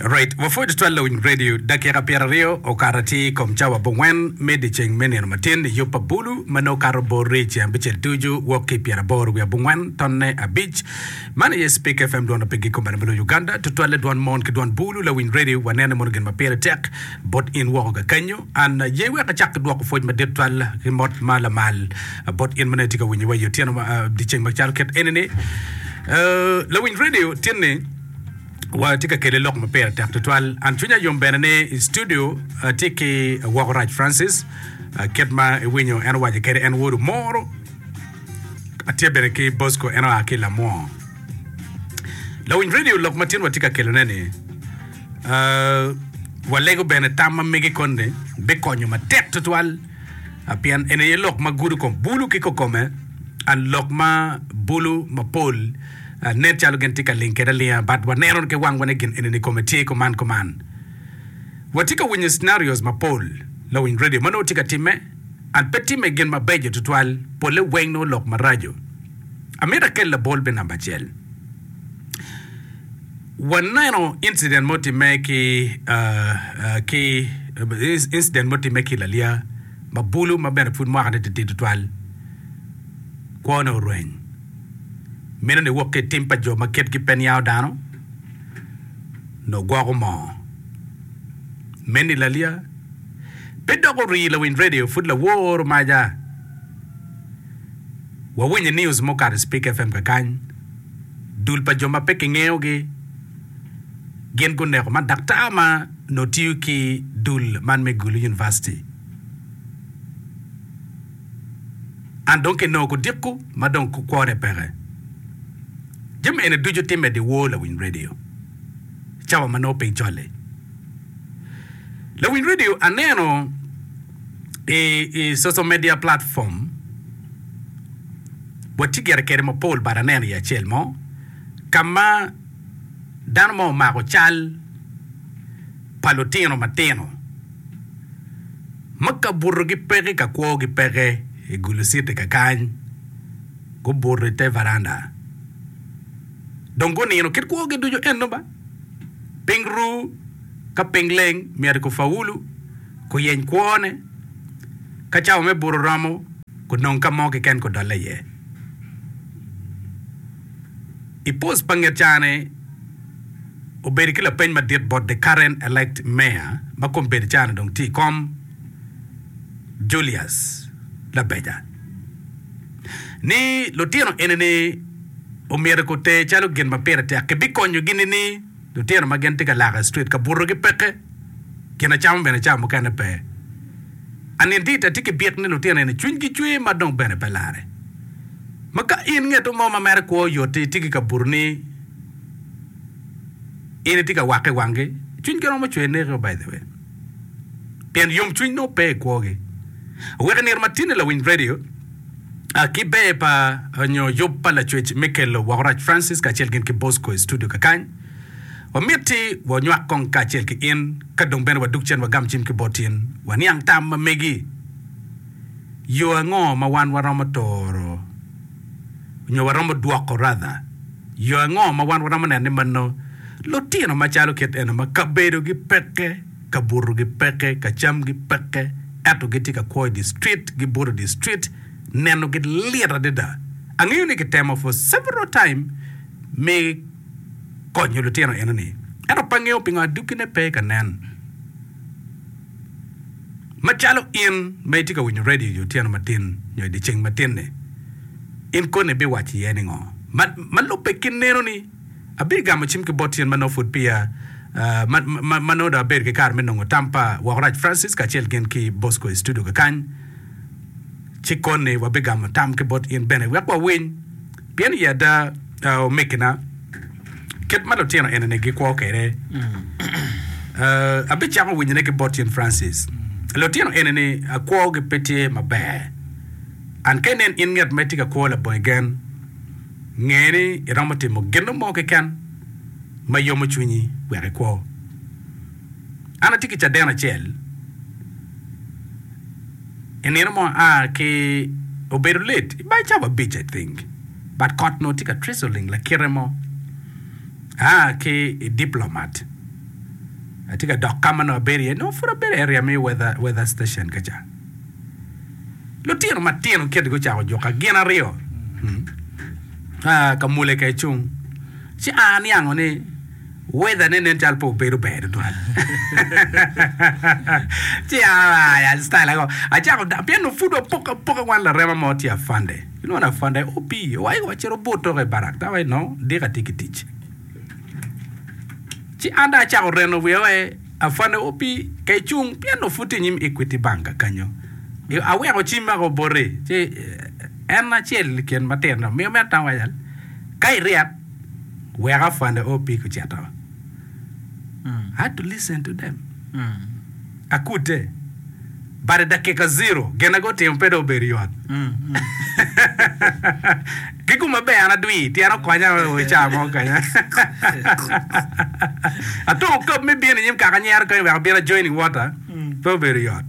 Alright, wapwod tutwal lawiny radio dakika pyeraryo okato atir i kom cawa abongwen me dyeceng me nino matin i yub pa bulu ma nongo kato bor ric abicel tucu wok ki pyeraboro wiye abongwen tonne abic. Man aye Speke FM dwon ma pe giko bene ma loyo Uganda. Tutwalle dwon mon ki dwon bulu lawiny radio wanene mono gin ma pire tek bot in woko kakenyo. An aye wek acak ki dwoko pwoc madit twal ki mot ma lamal bot in ma nongo itye ka winyowa i otyeno ma dyeceng ma calo kit eni-ni. Uh, lawiny redio tinni watye ka kele lok ma pire tek tutwal. An cwinya yom bene ni i studio atye ki woko Rac Francis, uh, kit ma iwinyo en owaco kede en wodo moro. Atye bene ki Bosco en oa ki Lamwongo. Lawiny redio lok ma tin watye ka kelone-ni, Walego bene tam ma mege koni bikonyo matek tutwal pien en aye lok ma gudo kom bulu ki kokome, and lok ma bulu mapol nen calo gin tye ka ling kede alinga but waneno ki wangwa ni gin eni kome tye kuman kuman. Watye ka winyo scenarios mapol, lawiny radio ma nongo tye ka timme and pe timme gin mabeco tutwal, pole weng nongo lok maraco. Amito akel labol me namba acel. Waneno incident mo timme ki ki incident mo timme ki lalia ma bulu ma bene pud mwaka ne titidi tutwal. Kwo ne orweny. Meno ni wok ki itim pa jo ma kitgi pe niango dano nyo gwoko moo. Men ni lalia pe dok orii lawiny radio pud lawor maja. Wawinyo i news mukato i Speak FM kakany. dul pa jo ma pe kingeyogi gin guneko man daktar ma nongo tiyo ki dul man me Gulu University. An dong kinongo kudiko ma dong kwone peke. Jami eni ducu timme dyewor lawiny redio cawa ma nongo piny col-li. Lawiny redio aneno i, i social media platform, Watye gire kede mapol bad aneno i acel mo ka ma dano mo omako cal pa lutino matino ma kabutogi peke ka kwogi peke i gulusiti kakany, gubuto i te varanda dong gunino kit kwogi ducu. Ento ba piny ru ka piny leng myero ki faulu. guyeny kwone. Ka cawa me buto romo, gunong ka mo keken gudolle iye. I post pa nget caa-ni, obedo ki lapeny madit bot the current elect mayor ma kombedo caa-ni dong tye i kom, Julius Labeja, ni lutino eni-ni omyero gute calo gin ma pire tek kibikonyogi nining? Lutino ma gin tye ka laka i street ka butogi peke. gin acama bene ca mukene pe. Anindita tye ki byek ni lutino eni cwinygi cwer ma dong bene pe larre. Ma ka in ngeto mo ma mere kwo yot-ti tye ki ka buto ni in itye ka wakke i wanggi, cwinygi romo cwer neko by the way. Pien yomcwiny nongo pe i kwogi. Wek inir matini lawiny radio a ki ber pa nyo yub pa lacwec Michael Wakorac Francis kacel gin ki Bosco i studio kakany. Wamitti wanywak kong kacel ki in, ka dong bene wadug cen wagam cim ki bot in, waniang tam ma megi. Yo ango ma wan waromo toro nyo waromo dwoko radha? Yo ango ma wan waromo neno ni mano lutino macalo kit eno ma kabedogi peke, kabutogi peke, kacamgi peke, ento gitye ka kwo i distrit, gibuto i distrit, nenogi lit adada. Angeyo ni kitemo for several time me. konyo lutino enoni. Ento pe angeyo pingo aduggine pe ka nen. Macalo in ma itye ka winyo redio i otyeno matin nyo i dyeceng matin-ni, in koni ibiwaco iye ningo? Ma, ma lubbe ki nenoni, abigamo cim ki bot tyen ma nongo pud peya, ma, ma, ma nongo dong abedo ki kare me nongo tam pa woko rac Francis kacel gin ki Bosco i studio kakany. Ci koni wabigamo tam ki bot in bene wek wawiny. Pien i ada, omegina, kit ma lutino enini gikwo kwede, abicako winyone ki bot Jane Francis, Lutino enini akwogi pe tye maber. And ka inen in ngat ma itye ka kwo labongi gen, nge ni iromo timo gin mo keken ma yomo cwinyi wek ikwo. An atye ki caden acel. I nino mo a ki obedo lit i bacawa abic I think but kot onongo tye ka treasuling lakite mo a ki i diplomat atye ka dok kama nongo abedo iye nongo pud abedo area me weather weather station ka ca lutino matino kiti gucako juka gin aryo a kamule ka ecung ci a aniango ni Weather ne nen calo pe obedo ber tutwal. Ci aaya style ago. Acako da pienno pud wapok apoka wan larema mo tye afande. Inwon afande obi owayo wa cito but toka i barak tawa i nongo dika atye ki tic. Ci an dong acako reno wiya wae afande obi ka icung pienno pud tye inyim Equity Banka kanyo. Aweko cim ago bote ci en acel i kin matino miyo me atama waco ka iryep weka fwanda o pig ocito. I had to listen to them. Akute. But i dakika zero, gin na gutimo pe dong obedo yot. Ki kum ma ber an adwi, tyen okonya o i caa mo kanya. Atung okab me bino i nyim kaka nyero kany wek abino ajoin i wota, pe obedo yot.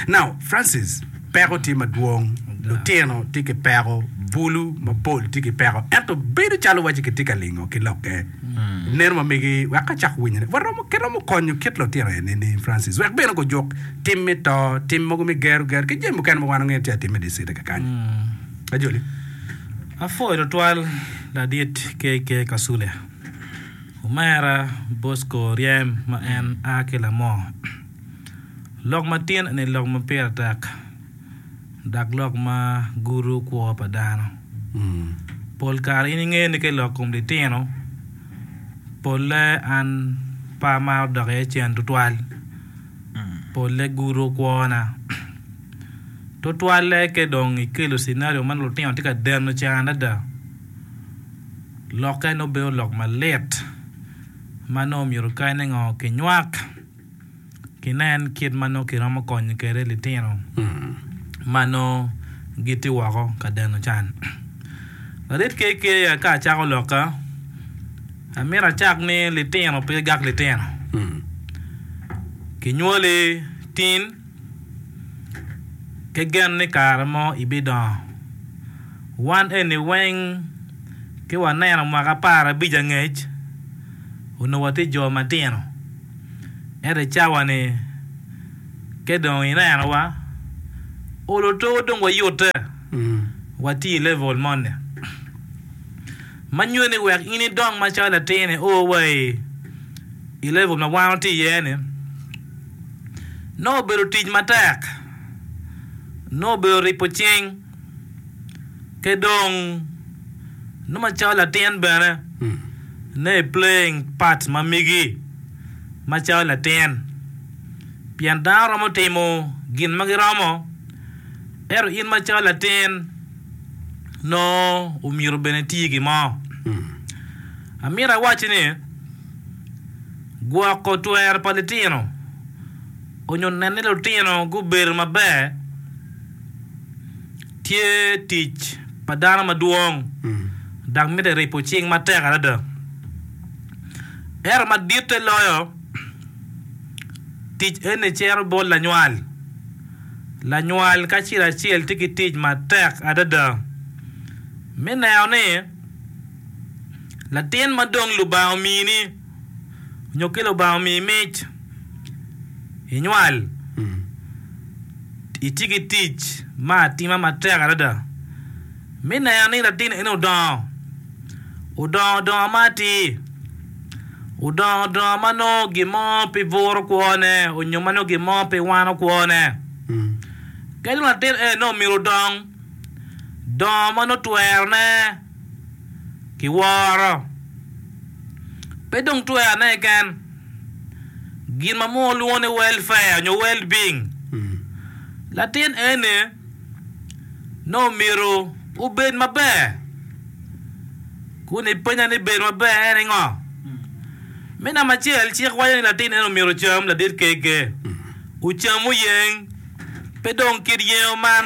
Now, Francis, peko tye madwong, lutino tye ki peko, bulu mapol tye ki peko, ento bedo calo waci kitye ka lingo ki lokke, neno ma megi wek ka cako winyone, waromo, kiromo konyo kit lutino enini, Francis, wek bene gujuk tim me to, tim mogo me gero gero, ki jami mukene ma wan wangeyo ni tye ka timme i dicita kekany. Ajoli. Apwoyo tutwal Ladit KK Kasule, Omera Bosco Oryem ma en a ki Lamoo. Lok matin eni lok ma pire tek dok lok ma gudo kwo pa dano. Pol kare in ingeyo ni ka ilok kom litino pole an pe amaro dok iye cen tutwal pole gudo kwona tutwalle ka idong ikelo cinario ma nongo lutino tye ka deno can adada lokke nongo bedo lok malit ma nongo myero kany ni ngo kinywak. kinen kit ma nongo kiromo konyo kwede litino ma nongo gitye woko ka deno can. Larit KK aye ka acako lokka, amito acak ni litino pe gak litino. Kinywoli tin, ki gen ni kare mo ibidongo. Wan eni weng ki waneno mwaka apar abic angec, onongo watye jo matino. Ento i cawa-ni, ka dong inenowa, olo to dong wayute, watye i level moni ma nyuto ni wek in idong macalo latin io wa i level ma wan watye iye-ni, nongo obedo tic matek, nongo obedo ripo cing. ki dong nongo macalo latin bene nongo i playing part ma migi macalo latin pien dano romo timo gin ma giromo ento in macalo latin nongo omyero bene iti gin mo amyero awacci ni gwoko twero pa litino Onyo nen ni lutino gubedo maber tye tic pa dano madwong dok mitte ripo cing matek adada. Ento maditte loyo, tic eni cito bot lanywal. Lanywal kacel acel tye ki tic matek adada me neno ni latin ma dong Lubanga omini, nyo ki Lubanga omiyi mic, inywal, iti ki tic ma atima matek adada me neno ni latin eni odongo, odongo donga ma atir, odongo donga ma nongo gin mo pe buro kwone nyo ma nongo gin mo pe wano kwone. Ka dong latin eni nongo myero odong dongo ma nongo twerone ki woro. Pe dong twero ane keken gin ma munu lwongo ni welfare nyo well being. Latin eni nongo omyero obed maber. Kun ipenya ni bedo maber en ni ngo? Me namba acel cik waco ni latin eni omyero ocam ladit kege, ocam oyeng, pe dong kit yengo man.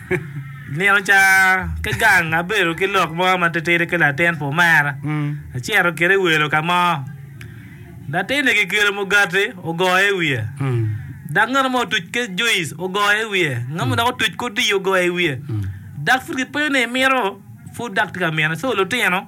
Nino ca ki gang abedo ki lok mo matitidi ki latin pu mera. Acito kede i welo ka mo. Latin-ni kikelo mugati ogoyo i wiye. Dok ngat mo otuc ki juic ogoyo i wiye. Ngat mo dok otuc ki odiyo ogoyo i wiye. Dok pud kipenyo ni imito pud dok tye ka mine. So lutino.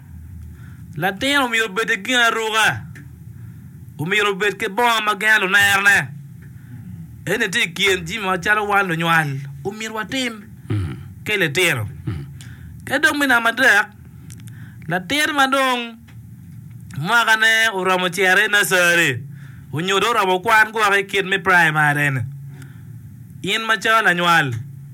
Latin omyero obed ki ginaruka, omyero obed ki bongo ma gengo lunerone. Eni tye i kin jami macalo wan lunywal omyero watim ki litino. Ki dong me namba adek, latin ma dong mwakane oromo cito i nursery onyo dong oromo kwan gwok i kit me primary-ni, in macalo lanywal,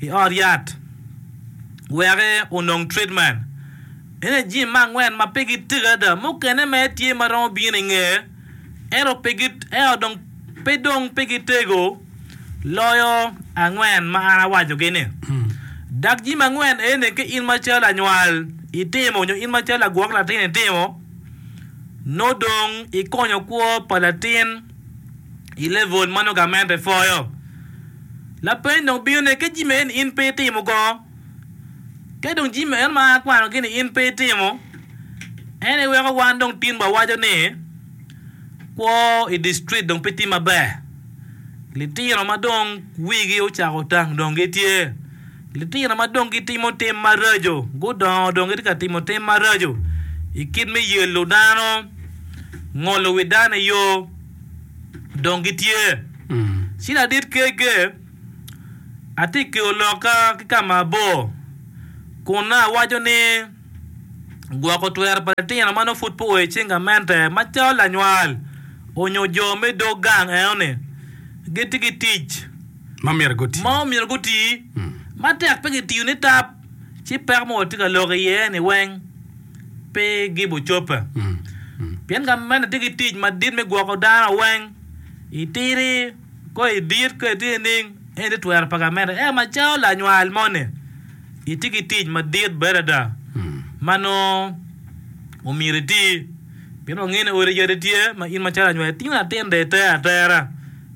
i ot yat wek onong tritmen. Ene jami me angwen ma pigi tek adada. Mukene mere tye ma romo bino i nge ento pe dong pigi tego loyo angwen ma an awacogi-ni. Dok jami angwen eni ka in macalo lanywal itimo nyo in macalo lagwok latin itimo, nongo dong ikonyo kwo pa latin. i level ma nongo gamente epwoyo. Lapeny dong bino ne ka jami eni in pe itimo go, ka dong jami eno ma akwano gi ni in pe itimo, en aye weko wan dong tin wa waco ni kwo i district dong pe tye maber. Litino ma dong wigi ocako otang dong gitye. Litino ma dong gitimo tim maraco gudongo dong gitye ka timo tim maraco i kit me yelo dano, ngolo wi dano i yo, dong gitye. Ci ladit kegge atye ki olokka ki ka ma abor kun nongo awaco ni gwoko twero pa litino ma nongo pud pe oa i cing gamente macalo lanywal onyo jo me dog gang enoni gitye ki tic. ma omyero guti matek pe gitiyo nitap ci peko ma watye ka lok iye-ni weng pe gibo cobbe. Pien ka meno tye ki tic madit me gwoko dano weng, itidi ka idit ka itye nining, eni tye twero pa gamente. Ento macalo lanywal moni, itye ki tic madit bene ada ma nongo omyero iti pien wangeyo ni odi yadi tye ma in macalo lanywal itingo latin dong iter atera.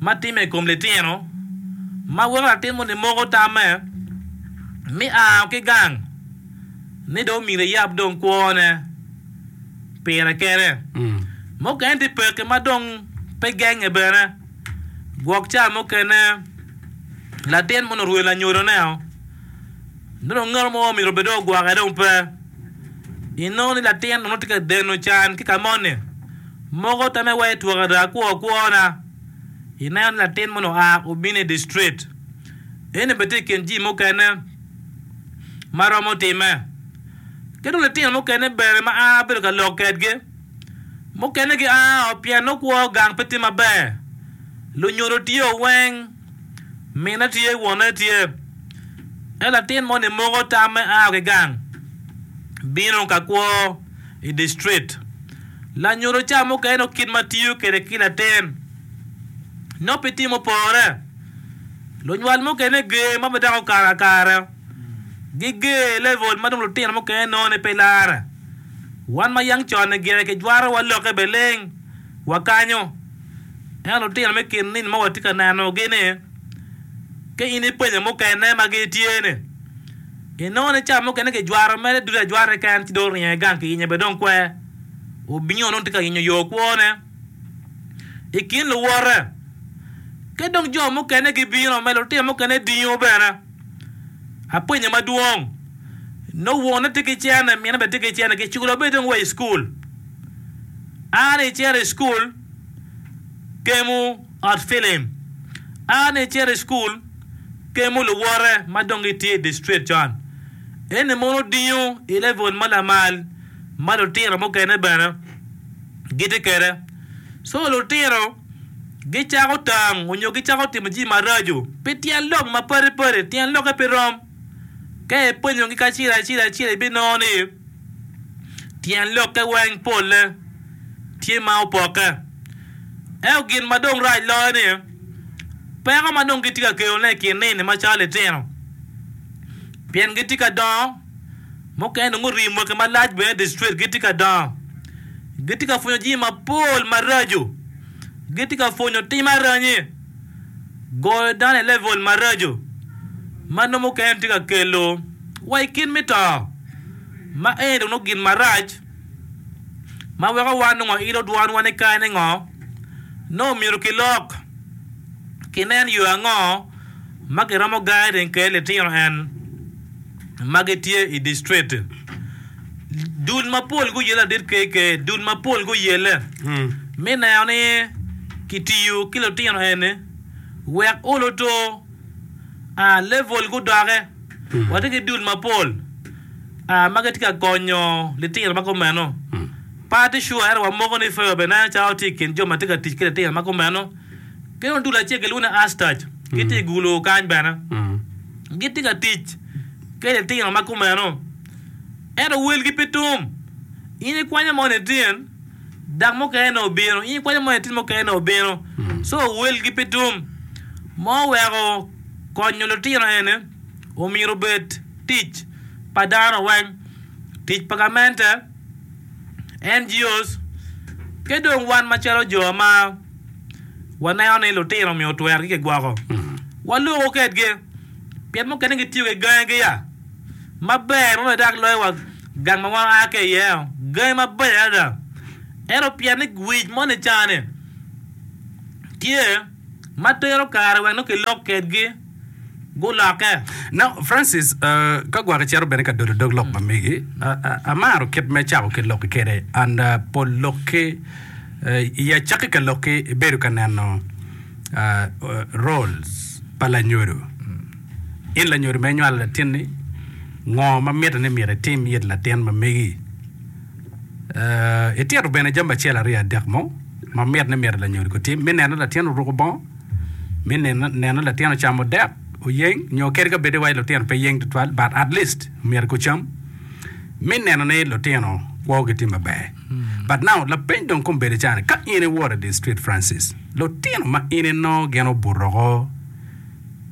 ma timme i kom litino ma weko latin moni moko tamme me ao ki gang ni dong myero eyab dong kwone pire kene. Mukene tye pekki ma dong pe genge bene. Gwok ca mukene latin moni orwelo anyodone-o Dong ngat mo omyero bed dong ogwokke dong pe. Inongo ni latin onongo tye ka deno can ki ka moni. Moko tame wa i twok ada kwo kwona. Ineno ni latin moni oa obino i distrit. Eni bene tye i kin jii mukene ma romo time. Ki dong litino mukene bene ma aa bedo ka lok kedgi. Mukene gi aa o pien nongo kwo gang pe tye maber. Lunyodo tye o weng. Mine tye, wonne tye. En latin moni moko tamme a ki gang bino ka kwo i distrit. Lanyuto ca mukene nongo kit ma tiyo kwede ki latin nongo pe tye mupore. Lunywal mukene ger ma pe dako kare akara, giger i level ma dong lutino mukene nongo ni pe lare. Wan ma yang con-ni gire kijwarowa lokke beleng. wakanyo. Ento lutino me kin nino ma watye ka nenogi-ni, ka in ipenyo mukene ma gitye-ni, inongo ni cawa mukene kijwaro mere ducu ajwara keken ci dong oringo i gang kiyenyo bene dong kwer. Obingo nongo tye ka yenyo yo kwone i kin luwote. Ka dong jo mukene gibino ma lutino mukene dingo bene, apenyo madwong, nongo wonne tye ki cene, minne bene tye ki cene, kiculo bene dong wa i cukul? A ni icito i cukul, gemu ot filim. A ni icito i cukul, gemu luwote ma dong gitye i dictrit con. Eni mono odingo i level ma lamal ma lutino mukene bene gitye kwede. So lutino gicako tang onyo gicako timo jami maraco pi tyen lok mapadi padi, tyen lokke pe rom. Ka ipwonyogi kacel acel acel ibinongo ni tyen lokke weng polle tye ma opokke. Ento gin ma dong rac loyo ni peko ma dong gitye ka kelone i kin nini macalo litino pien gitye ka dongo, mukene dong guriyo mwaki malac bene dye street gitye ka dongo gitye ka pwonyo jami mapol maraco, gitye ka pwonyo tim aranyi. goyo dano i level maraco ma nongo mukene tye ka kelo wa i kit me to, ma eni dong nongo gin marac ma weko wan nongo wailo dwanwa ni kare ni ngo, nongo myero kilok kinen yo ango ma kiromo gayo teng kede litino en. ma gitye i district. Dul mapol guyelle adit KK. Dul mapol guyelle me neno ni kitiyo ki lutino eni wek olo to, a level gudoke. Watye ki dul mapol a ma gitye ka konyo litino ma kumeno. Pe atye sure ento wamoko ni Feo bene calo tye i kin jo ma tye ka tic ki litino ma kumeno. Litino dul acel kilwongo ni Astac gitye i gulo kany bene. Gitye ka tic ki litino ma kumeno. Ento welgi pe tum. In ikwanyo mo nitin, dako mukene-ni obino. In ikwanyo mo nitin, mukene-ni obino. Co welgi pe tum. Ma oweko konyo litino eni omyero obed tic pa dano weng, tic pa gamente, NGOs, ki dong wan macalo jo ma. waneno ni lutino omyero otwer ki kigwoko waloko kedgi pien mukene gitiyo ki gangi giya maber ma bedak loyo wa gang ma wan aa ki iye o gangi mabeco adada ento pien ni wic mo ni cani tye ma tero kare wek nongo kilok kedgi gulokke. Now, Francis, uh, ka gwok icito bene ka dodo dog lok ma megi, uh, uh, amaro kit me cako ki lokki kede, and uh, pol lokki, uh, i acakki ka lokki ibedo ka neno uh, uh, roles pa lanyodo. In lanyodo ma inywalo latinni, ngo ma mitte ni myero itim it latin ma megi? Itito bene jami acel aryo adek mo ma mit ni myero lanyodo gutim, me neno ni latin oruko bongo, me neno neno ni latin ocamo dek, oyeng, nyo kadi ka bedi wai lutino pe yeng tutwal but at least myero gucam, me neno ni lutino kwogi tye maber. But now lapeny dong kong bedi cani ka in iwot i di street Francis, lutino ma in inongo gin obuto oko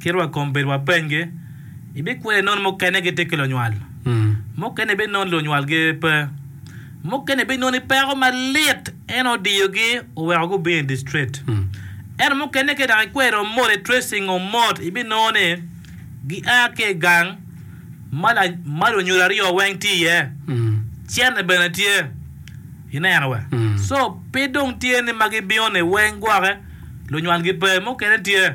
Kit wa kom bedo wapenygi, Ibikweri nono mukene gitye ki lunywal? Mukene ibinono lunywalgi pe? Mukene ibinoni peko malit en odiyogi oweko gubino i distrit? Ento mukene ka idok ikwero moti tracing o mot ibinono ni gia ki i gang ma lunyodo aryo weng tye iye, cente bene tye. Ineno we? So pe dong tye ni ma gibino ni weng gwoke lunywalgi pe, mukene tye.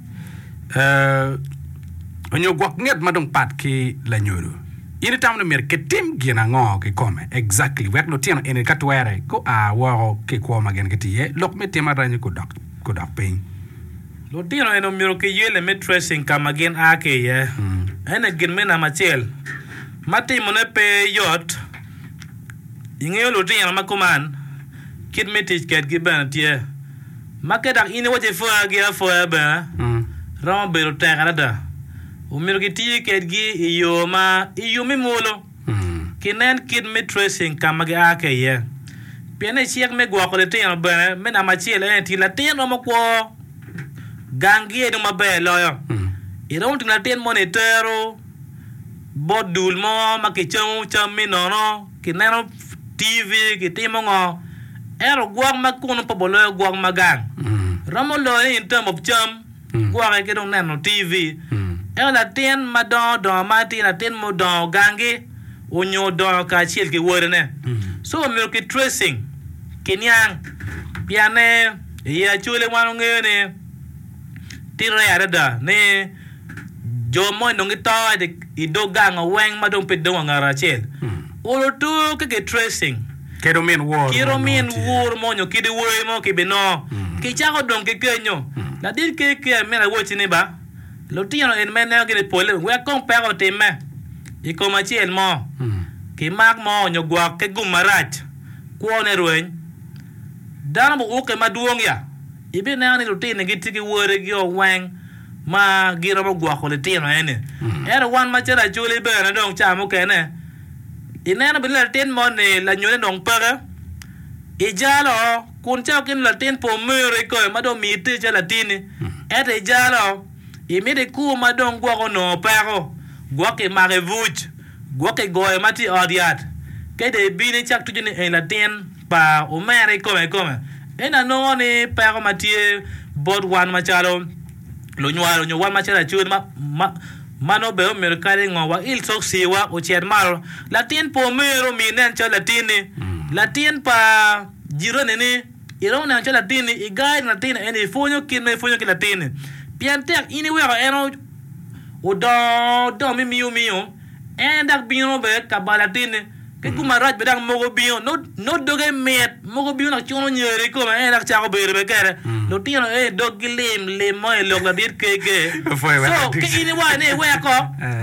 onyo gwok nget ma dong pat ki lanyodo, in itamo ni myero kitim gin ango kikome? Exactly, wek lutino eni ka twere gua woko ki i kwo ma gin gitye iye, lok me tim aranyi gudok piny. Lutino eni myero kiyelle me tracing ka ma gin a ki iye. Ene gin me namba acel ma timone pe yot. Ingeyo lutino ma kuman kit me tic kedgi bene tye. Makke dok in iwaco ipwoya gi apwoya bene, romo bedo tek adada. Omyero gitiye kedgi i yo ma i yub me mwolo ki nen kit me tracing ka ma gia ki iye. Pien ni cik me gwoko litino bene me namba acel ene ti latin romo kwo gang gi ennu maber loyo. Iromo timo latin moni itero. bot dul mo ma kicamo cam-mi nono, kineno TV, kitimo ngo, ento gwok ma kunu pe obolo loyo gwok ma gang. Romo loyo ni in term of cam, gwoki ki dong neno TV. Ento latin ma dongo dongo ma tye latin ma odongo gangi onyo odongo kacel ki wodine. So omyero ki tracing, kiniang, piyanne i Actually wan wangeyo ni tite adada ni jo mo onongo gito i dog gang o weng ma dong pe dong wa ngat acel. Olo tur ki ki tracing. Kit omin wor mo. Kit omin wor mo nyo kit wer mo ki bino. Ki cako dong ki kenyo. Ladit KKM myero awoti ni ba lutino eni ma ineno gini pole wek kong peko otimme i kom acel mo ki mak mo nyo gwok ki gum marac kwo ne rweny. Dano bu uke madwong ya ibineno ni lutini gitye ki were gi o weng. ma giromo gwoko litino eni. Ento wan macalo acoli bene dong ca mukene ineno bene latin moni lanyode dong peke, ijalo kun cako ki ni latin pe omiro ikoyo ma dong omiyi iter calo latinni, ento ijalo, imito ikur ma dong gwok onongo peko, gwok imako i buc, gwok igoyo ma tye i ot yat, ka dong ibino icak tuco ni eni latin. pa omera i kome kome. Ento anongo ni peko ma tye bot wan macalo lunywal nyo wan macalo acogi ma nongo bene omyero kadi ngo wail cokciwa ocit malo. Latin pa omeru omiyo inen calo latinni. Latin pa jiranini iromo neno calo latinni. I guide latinni ento ipwonyo kit ma ipwonyo ki latinni pien tek in iweko en odongo dong mimiyo miyo en dok bino bene ka bal latinni. Ki kum marac bene dok mogo bingo, nongo doge mit, mogo bingo dok cuno nyero i kome, en aye dok cako bedo bene kene. Lutino aye doggi lim lim mo i lok ladit kege. So, ka in iwaco ni iweko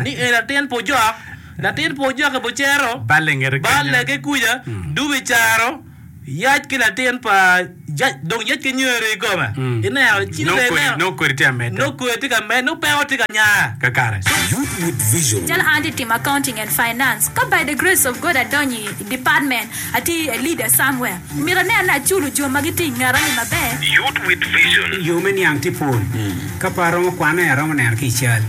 ni en latin pujok, latin pujok i Bucero, balle ki kuca, dubo i Caro, Yac ki latin pa Jac dong yec ki nyero i kome. Ineno, ci dong ineno nongo kodi tye ka medde. Nongo kodi tye ka medde, nongo peko tye ka nya. Kakare. Youth with Vision. Calo an atye timo Accounting and Finance, ka by the grace of God adonyo i department, atye a leader somewhere, myero aneno ni aculo jo ma gitye i ngeta-ni maber. Youth with Vision. Yo me niang tye pol. Ka pe aromo kwane, aromo neno ki i cal.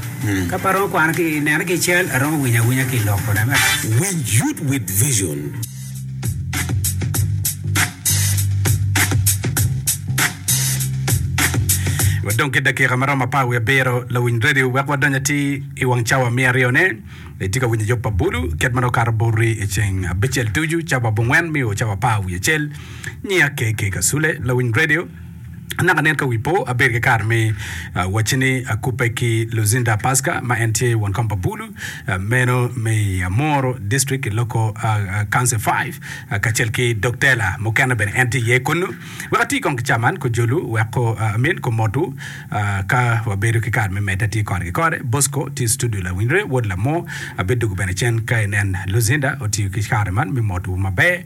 Ka pe aromo kwane ki neno ki i cal, aromo winyo awinya ki i lok kona. Winj Youth with Vision. Wadong ki dakika maromo apar wiye abiro lawiny radio wek wadony atir i wang cawa miya aryo ne. Itye ka winyo Yop pa Bulu, kit ma nokato boti i ceng abicel ducu, cawa abongwen mio cawa apar wiye acel. Nyiya KK Kasule, lawiny radio. Anaka nen ka wi po abedo ki kare me wacci ni akubbe ki Luzinda Paska ma en tye won kom pa Bulu meno me i Amoro District i Loko Council Five kacel ki dog tela mukene bene en tye iye kunnu. Wek ati kong ki ca man ku jolu wek ku amin ku motwu ka wabedo ki kare me medde ati kore ki kore. Bosco tye i studio lawinyre wod Lamo abiddugu bene cen ka inen Luzinda otiyo ki kare man me motwu maber.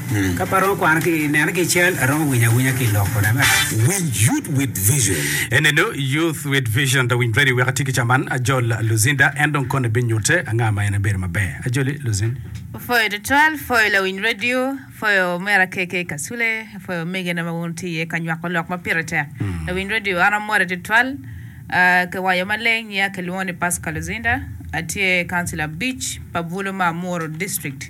Ka pe aromo kwano ki i neno ki i cal, aromo winyo awinya ki i loko. Amen. Winj Youth with Vision. Enenu Youth with Vision. Da winy very wek ati ki caman. Ajol Luzinda en dong kone binyute anga ma en en bedo maber. Ajoli Luzinda. Apwoyo twatwal, apwoyo lawiny radio, apwoyo omera KK Kasule, apwoyo omege na ma wun wutye iye ka nywako lok ma pire tek. Lawiny radio an amore twatwal, ah, kiwaco maleng nya kilwongo ni Pascal Luzinda, atye councilor Beach pa Bulu ma Amuru district.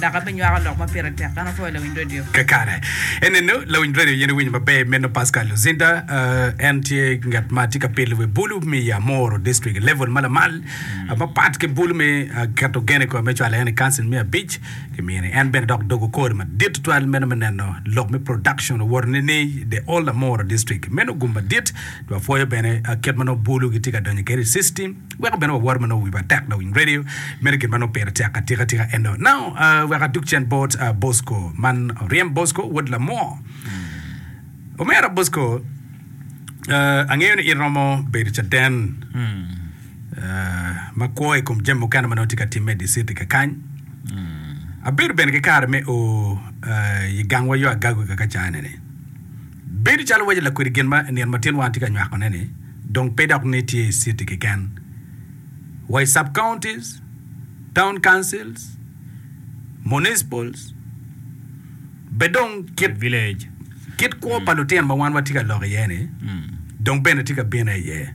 Dok abinywako lok ma pire tek. An apwoyo lawiny radio. Kakare. Enenu, lawiny radio aye niwinyo maber meno Pascal Luzinda. En tye ngat ma tye ka pilo wi bulu me Yamoro District, level ma lamal, mapat ki bulu me ah, keto gen i kome me cwalo en i kancil me abic. Kimini en bene dok dogo kore madit tutwal meno me neno lok me production owoto nini i the Old Amoro District. Meno gum madit. Dok apwoyo bene ah, kit ma nongo bulu gitye ka donyo kwede i system. Weko bene wawor ma nongo wiwa tek lawiny radio mere gin ma nongo pire tek atika tika eno. Now uh, wek aduk cen bot uh, Bosco man Oryem Bosco wod Lamo. Omera Bosco, uh, angeyo ni iromo bedo caden uh, ma kwo i kom jami mukene ma nongo tye ka timme i di city kakany. Abedo bene ki kare me o uh, i gangwa yo agago kaka cane ni. Bedo calo waco lakwedi gin ma i nino ma tyenwa tye ka nywako-ne-ni dong pe dok ni tye i citi keken, wa i sub-counties, town councils, municipals, be dong kit village. Kit kwo pa lutino ma wan watye ka lok iye-ni dong bene tye ka bine iye.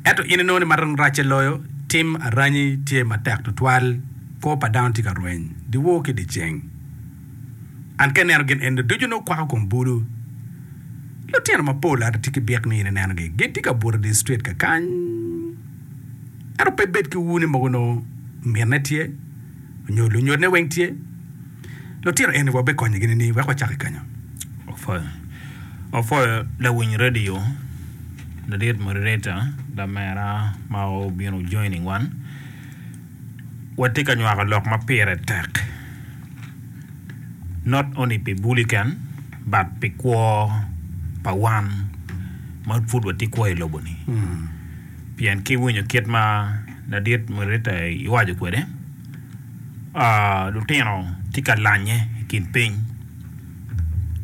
Ento in inongo ni ma dong racce loyo, tim aranyi tye matek tutwal, kwo pa dano tye ka rweny dyewor ki dyeceng. An ka ineno gin eni ducu nongo kwako kom bulu. Lutino mapol ada tye ki byek nongo in inenogi. Gin tye ka buto idye street kakany. Ento pe ibed ki ur ni mogo nongo minne tye nyo lunyodne weng tye. Lutino eni wabikonyigi nining? Wek wacak ki kenyo. Opwoyo, opwoyo lawiny radio ladit moderator lamera ma obino joining wan. Watye ka nywako lok ma pire tek not only pi buli keken but pi kwo pa wan ma pud watye kwo i lobo ni pien ki winyo kit ma ladit Murita iwaco kwede lutino tye ka lanye i kin piny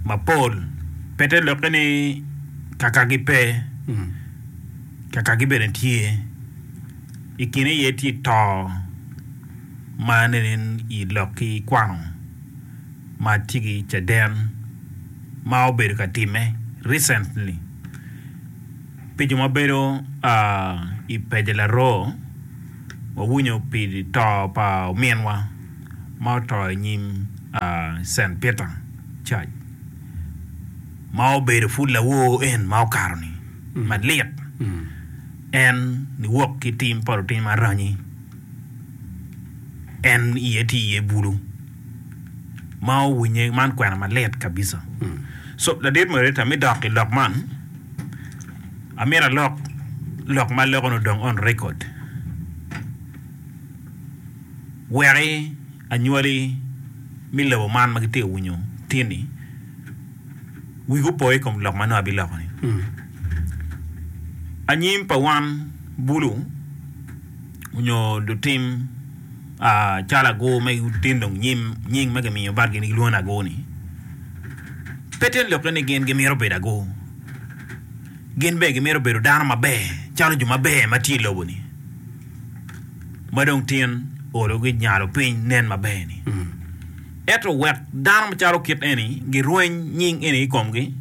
mapol pe te lokke ni kakagi pe kakagi bene tye. I kine aye tye to ma nenen i lok ki kwano ma tye ki caden ma obedo ka timme recently pi jo ma bedo i pece laroo wawinyo pi to pa ominwa ma oto i nyim Cent Peter church ma obedo pud lawor en ma okato ni malit. En niwok ki tim pa lutim aranyi, en iye tye iye bulu ma owinye. Man kwena malit kabisa. So ladit moderator me dok i lok man, amyero alok lok ma aloko-ni odong on record weki anywali me lobo man ma gitye ka winyo tin-ni. wigi opo i kom lok ma nongo abiloko-ni. Anyim pa wan bulu onyo lutim calo agur me tino nying ma gimiyo bad gin gilwongo ni agur-ni, pe tyen lokke ni gin gimito bedo agur. Gin bene gimito bedo dano maber calo jo maber ma tye i lobo-ni ma dong tin ologi nyalo piny nen maber-ni. Ento wek dano macalo kit eni girweny nying eni i komgi,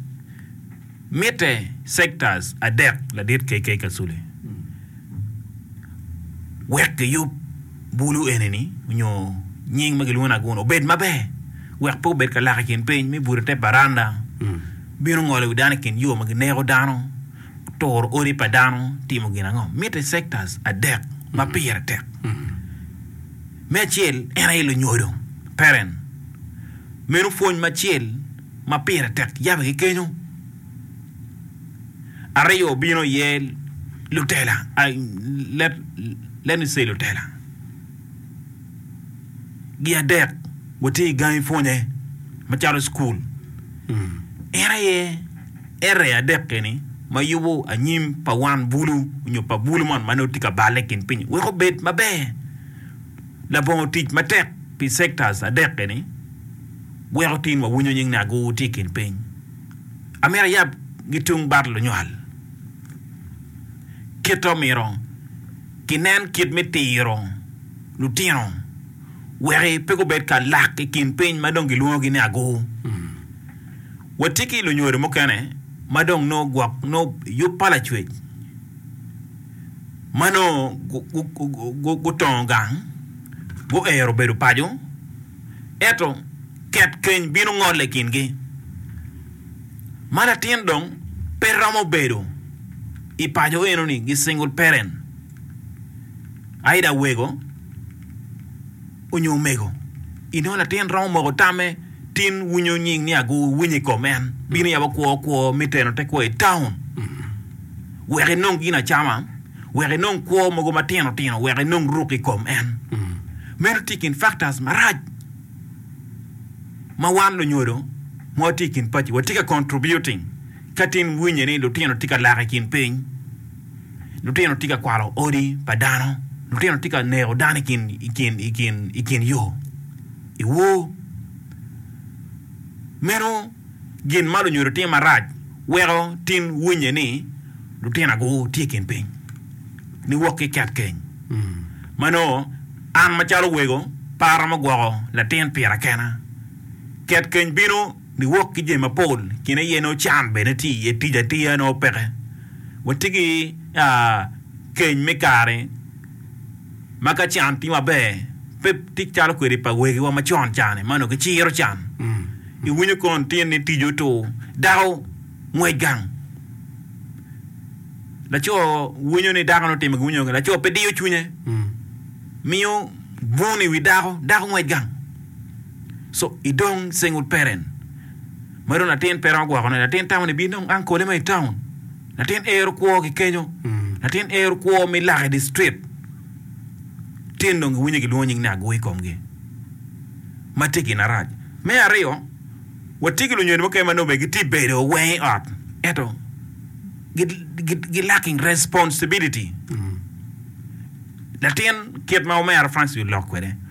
mitte sektas adek ladit KK. Kasule wek giyub bulu eni-ni nyo nying ma gilwongo ni Aguna obed maber wek pe obed ka lak i kin piny me buto i te baranda, bino ngolo i wi dano i kin yo ma gineko dano, turo odi pa dano, timo gin ango. Mitte sektas adek ma pire tek. Me acel, en aye lunyodo, parent. Meno pwony macel ma pire tek yabe ki kenyo. Aryo bino iye lutela, let let me say lutela gi adek watye i gangi pwonye macalo i cukul. En aye Ere adek eni ma yubo anyim pa wan bulu nyo pa bulu moni ma nongo tye ka balle i kin piny-nyi? Wek obed maber, labongo tic matek pi sectors adek eni wek otin wawinyo nying Nago tye i kin piny. Amito ayab gi tung bat lunywal. Kit omyero ginen kit me tiro lutino wek pe gubed ka lak i kin piny ma dong gilwongo gi ni Ago. Wati ki lunyodo mukene ma dong nongo gwok nongo yub pa lacwec ma nongo gutongo gang guero bedo paco, ento ket keny bino ngole i kingi, ma latin dong pe romo bedo i paco eno ni gi single parent, aida wego. onyo omego, inongo latin romo moko tamme tin wunyo nying ni ago winyo i kom en bino yabo kwo kwo me teno te kwo i town wek inong gin acama wek inong kwo mogo matino tino wek inong ruk i kom en meno tye kin factors marac ma wan lunyodo ma watye i kin paci watye ka contributing ka tin winye ni lutino tye ka lak i kin piny. Lutino tye ka kwalo odi pa dano. Lutino tye ka neko dano i kin, i kin, i kin, i kin yo. Iwo. Meno gin ma lunyodo timo marac weko tin winye ni lutinago tye i kin piny niwok ki ket keny. Ma nongo an macalo wego, pe aromo gwoko latin pira kena. Ket keny bino. Niwok ki jami mapol kin aye nongo can bene tye iye, tic atiya nongo peke. Watye ki keny me kare ma ka can tye maber pe tic calo kwede pa wegiwa macon ca-ni ma onongo giciro can. Iwinyo kong litino ni tic otur, dako ngwec gang, laco winyo ni dako-ni otimo gin ma winyo, laco pe diyo cwinye, miyo bun i wi dako, dako ngwec gang. So i dong Single parent ma dong latin pe romo gwokone, latin tamo ni bin dong ang kole ma i town. Latin ero kwo ki kenyo. Latin ero kwo me lak i di street. Tin dong giwinyo gilwongo nying ni agwo i komgi. Ma tye gin arac. Me aryo, watye ki lunyodo mukene ma nongo bene gitye bedo weng i ot ento gi, gi, gi lacking responsibility. Latin kit ma omera Francis olok kwede,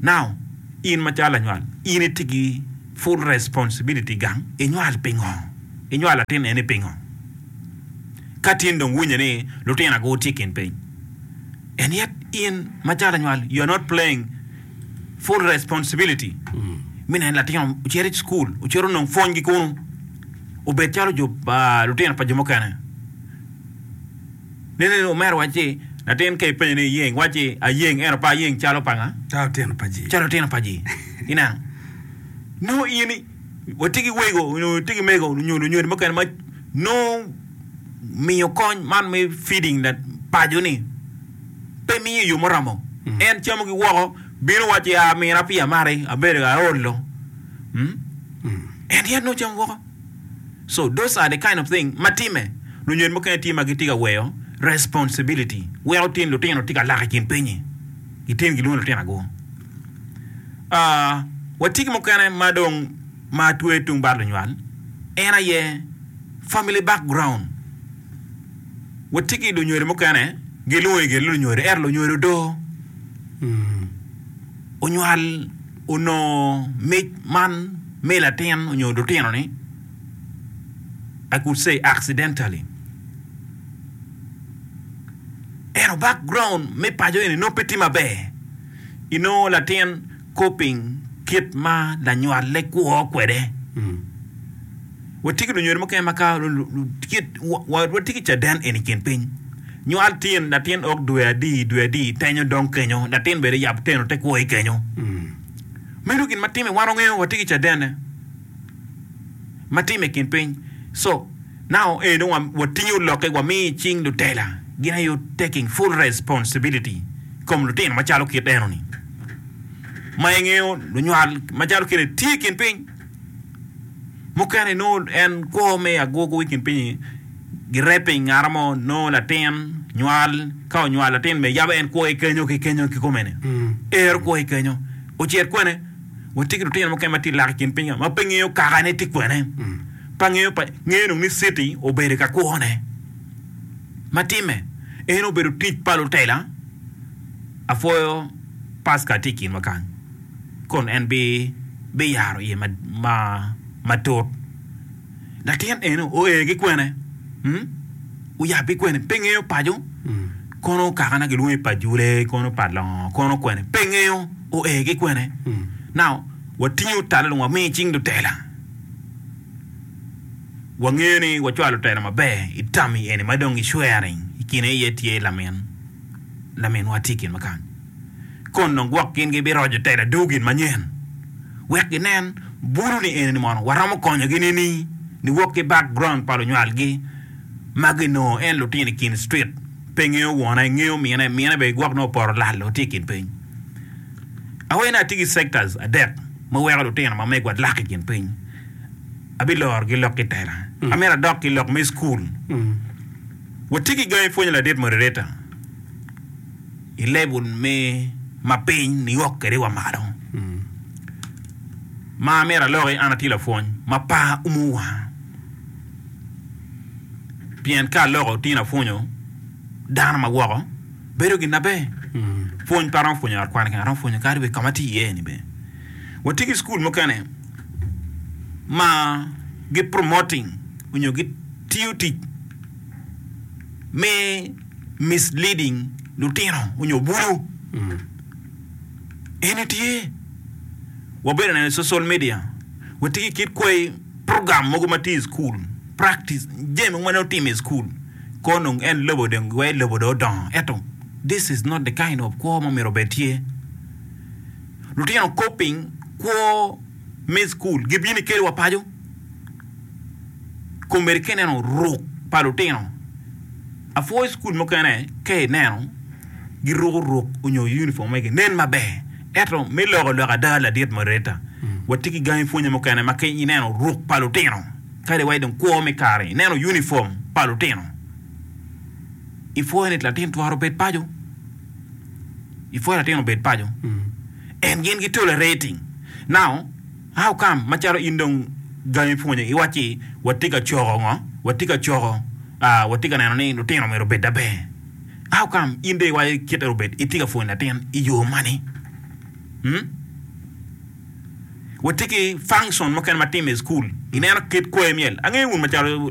Now in macalo lanywal in itye ki full responsibility gang inywal pingo? Inywal latin eni pingo? Ka tin dong winyo ni lutina go tye ikin piny and yet in macalo lanywal you are not playing full responsibility me neno ni latin ocito i school ocito nong pwony gi kunu obed calo jo lutina pa jo mukene. Lili omero wac ci, Latin ka ipenyo ni iyeng? Wac ci, Ayeng, ento pe ayeng calo pa nga? Calo otino pa ji. Calo otino pa ji. Ineno? Nongo in watye ki wego nyo itye ki mego nyo lunyodo mukene ma nongo miyo kony man me feeding that paco ni pe miyo i yo muromo. En camo gi woko, bino wac ci, ah, mina pi amari, abedo aolo. Hmm? En yat nongo camo woko. So those are the kind of thing ma timme. Lunyen mukene tye ma gitye ka weyo responsibility weko tin lutino tye ka lak i kin pinyi. I tin gilwongo lutinago. Ah, watye ki mukene ma dong ma twe tung bad lunywal, en aye family background. Watye ki lunywelo mukene gilungo i gin lunywelo ento lunywelo odoo. onywal onongo mic man me latin nyo lutino ni I could say accidentally ento back ground me paco eni nongo pe tye maber inongo latin coping kit ma lanywale kwo kwede. Watye ki lunyodo mukene ma ka watye ki caden eni i kin piny, nywal tin, latin ok dwe adi dwe adi, tenyo dong kenyo, latin bene yab teno te kwo i kenyo. Meno gin ma timme wan wangeyo watye ki cadene ma timme i kin piny. So, now eni dong watingo lokke wamiyo i cing lutela, gin aye taking full responsibility i kom lutino macalo kit eno ni, ma ingeyo lunywal macalo kit eni tye i kin piny. mukene nongo en kwo me agwogo i kin piny-nyi gire piny ngat mo nongo latin nywal ka onywal latin bene yam en kwo ki kenyo ki kenyo kikome-ni ero kwo ki kenyo ocit kwene wa tye ki lutino mukene ma tye lak i kin piny ka ma pe ngeyo kakane tye kwene pe angeyo pa ngeyo dong ni citi obedo ka kwone ma timme eno obedo tic pa lutela apwoyo pastor tye i kinwa kany. kun en biyaro iye matut. Latin eni oe ki kwene? Oyab ki kwene? Pe ngeyo paco. Kono kaka na gilwongo i pajule, kono pa longo, kono kwene? Pe ngeyo oe ki kwene. Now, watingo tala dong wamiyo icing lutela. Wangeyo ni wacwalo lutela maber i tammi eni ma dong gicwero-ri i kine iye tye lamin, laminwa tye i kinwa kany. Kono dong gwok gin gibiroco tela aduu gin manyen wek ginen bulu ni eni ni mono waromo konyogi nini ni wok ki back ground pa lunywal gi ma gi noo en lutino ikin street pe ngeyo wona ingeyo mine mine bene gwok nongo opoto lal oo tye ikin piny awene atye gi sectors adek ma weko lutino ma megwa lak ikin piny abiloro gi lok ki tela mm. amito adok ki lok me school mm. watye ki gangi pwonyo ladit moderator i level me mapiny niyok kede wa malo ma amyero aloki an atye lapwony ma par umo wa pien ka aloko tyen apwonyo dano ma woko bedo gin maber pwony pe aromo pwonyo i ot kwan keken aromo pwonyo kadi bed kama atye iye ni bene watye ki cukul mukene ma gi promoting onyo gitiyo tic me misleading lutino onyo bulu eni tye wabedo neno i social media wa tye ki kit kwai program mogo matye i school practice jami mogo ma nongo time i school ko nongo en lobo dong giwaco ni lobo dong odongo ento this is not the kind of kwo ma myero obed tye lutino coping kwo me school gibino kelo wa paco. komedi ka ineno ruk pa lutino apwo i cukul mukene ka ineno giruko ruk nyo unifom magi nen maber ento me loko loka ada ladit mareta watye ki gangi pwonye mukene ma ka ineno ruk pa lutino kadi wa idong kwo me kare ineno unifom pa lutino ipwoyo ni latin twero bed paco ipwoyo latin obed paco and gin gitwero rating now How come macalo in dong gangi ipwonyo iwacci watye ka coko ngo? Watye ka coko ah watye ka neno ni lutino myero obed aber. How come in dong iwaco kit myero obed itye ka pwonyo latin i yo mani? Umm watye ki function mukene ma time i school ineno kit kwoyo myel angeyo wun macalo